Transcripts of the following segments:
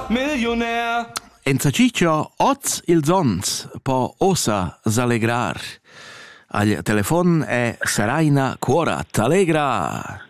Milliunär! Enzatgi cho hoz ils ons po ossa s'allegrar. Al telefon è Seraina Cuorat. Allegra!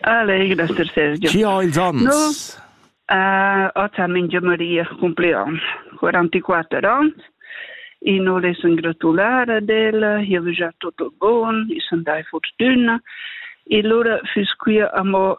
Alleg, Dr. Sergio. Chi ho ils ons? No, uh, hoz ha mingia Maria compleon, 44 ans, e no les in gratulare del, io vi già tutto bon, i son dai fortuna, e lora fus quia amo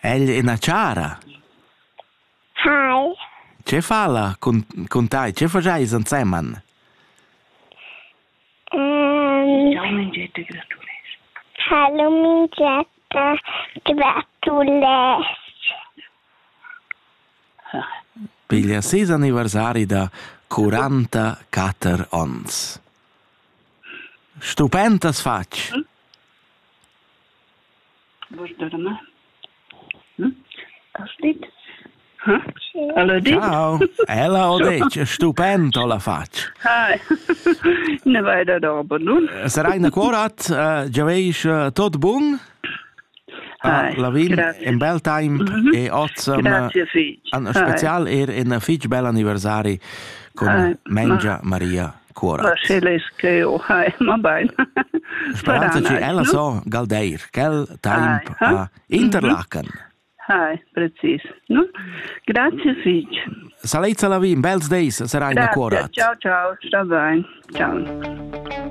Ella è ina chara. Hai. Tge fa ella cun, cun tai? Tge fajais ensemen? Hallo Mingetta, gratulesc. Piglia ses anniversari da 44 onns. Stupentas fatg! Vus dorma? Ella steht? Ella di? Ciao. Ella ho detto, stupend ho la fatg. Hi. Ne vai da dorbo nun? Sarai na cuorat, uh, già veis uh, tot bun. Ah, Lavin, in bel time mhm. e oz an special er in fitch bel anniversari con Mengia Maria. Cuora. Ma sche leis che o ha, ma bain. Speranza che ella so galdeir, quel taimp a interlachen. Hai, precis. No? Grazie fig. Salezza la vin, bels deis, sarai na cuorat. Ciao, ciao, sta bain. Ciao.